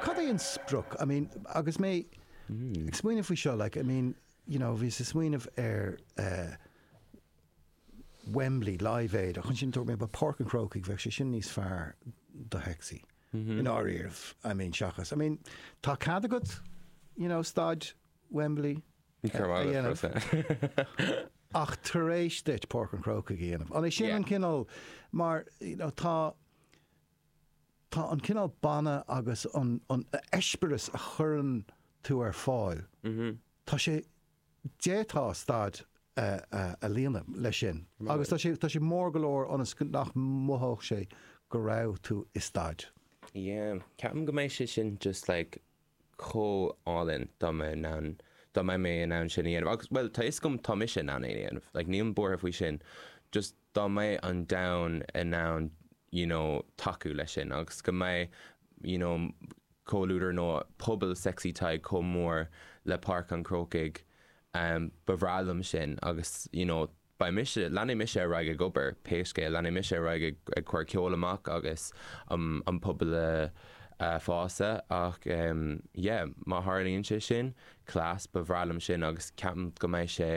Cad é an sprioc? I mean, agus mé ag smaoineamh faoi seo, like, I mean, you know, bhíos ag smaoineamh ar eh Wembley, Live Aid, ach ansin dúirt mé ba Páirc an Chrócaigh bheadh sé sin níos fearr do Sexy. I ndáiríre, I mean, seachas, I mean, tá cead agat, you know, staid Wembley a dhéanamh. Ach tar éis duit Páirc an Chrócaigh a dhéanamh. An é sin an cineál, mar you know, tá tá an cineál banna agus an eispéireas a chuireann tú ar fáil, tá sé, d'fhéadfá staid a líonadh leis sin agus tá sé, tá sé mór go leor ionas nach mothódh sé go raibh tú i staid. Yeah, ceapaim go mbeidh sé sin just like chomh álainn dá mbeadh in ann, dá mbeadh mé in ann sin a dhéanamh agus, bhuel, tá fhios agam, tá mise in ann é a dhéanamh, like, nílim buartha faoi sin, just dá mbeadh an domhan in ann, you know, tacú leis sin agus go mbeadh, you know, comhluadar nó pobal Sexy Tadhg chomh mór le Páirc an Chrócaigh, ba bhreá liom sin agus, you know, beidh mise, leanfaidh mise ar aghaidh ag obair pé scéal, leanfaidh mise ar aghaidh ag, ag cur ceol amach agus an, an pobal a, a shásamh ach em yeah má tharlaíonn sé sin, class, ba bhreá liom sin agus ceapaim go mbeidh sé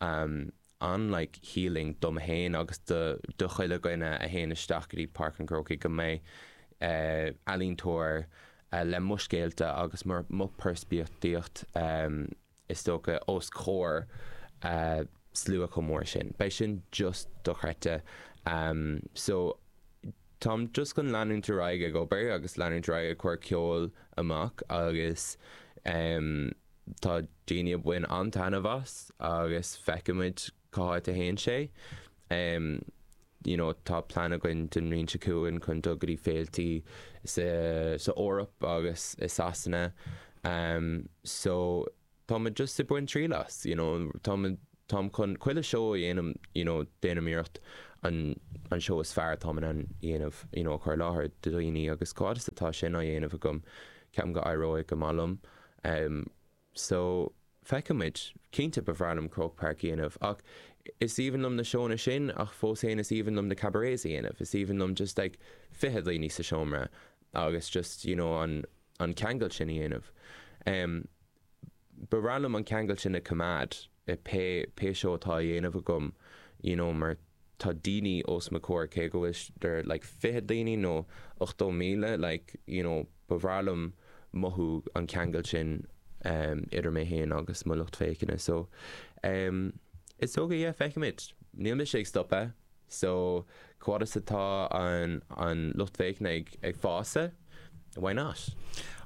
em an like healing dom fhéin agus do, do chuile dhuine a théann isteach go dtí Páirc an Chrócaigh go mbeidh eh ealaíontóir eh le mo scéalta agus mo, mo pheirspictíocht em. is dócha, os comhair slua chomh mór sin. Beidh sin just dochreidte. So, táim just chun leanúint ar aghaidh ag obair agus leanúint ar aghaidh ag cur ceol amach agus tá daoine ag baint an-taitneamh as agus feicfimid cá háit a théann sé. you know tá plean againn don mbliain seo chugainn chun dul go dtí féilte sa sa Eoraip agus i Sasana so tá muid just ag baint triail as you know tá muid táim chun chuile seó a dhéanamh you know déanaim iarracht an an seó is fearr atá mé in ann a dhéanamh you know a chur i láthair do dhaoine agus fad is atá sin á dhéanamh agam ceapaim go n-éireoidh go maith liom So, feicfimid. Cinnte, ba bhreá liom Croke Park a dhéanamh, ach is aoibhinn liom na seóanna sin, ach fós fhéin is aoibhinn liom na cabarets a dhéanamh, is aoibhinn liom just like fiche daoine sa seomra agus just you know an an ceangal sin a dhéanamh. Em, ba bhreá liom an ceangal sin a choimeád. e Pé pé seó atá a dhéanamh agam you know mar tá daoine os mo chomhair cé acu bhfuil they're like fiche daoine nó ochtó míle like you know ba mhaith liom mothú an ceangal sin em idir mé féin agus mo lucht féachana so em is dócha yeah feicimid níl mise ag stopadh so fad is atá an an lucht féachana ag ag fás e why not?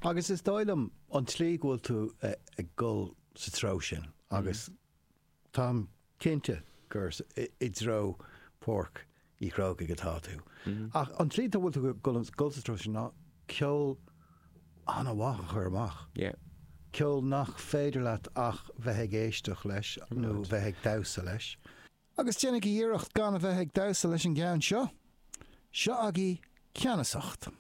Agus is dóigh liom an tslí go bhfuil tú ag dul sa treo sin agus táim cinnte gur i dtreo Pháirc Uí Chrócaigh atá tú. Ach an tslí a bhfuil tú ag dul sa treo sin ná ceol an-mhaith a chur amach. Ceol nach féidir leat ach bheith ag éisteacht leis nó bheith ag damhsa leis. Agus déanaigí iarracht gan a bheith ag damhsa leis an gceann seo. Seo agaibh Ceannasacht.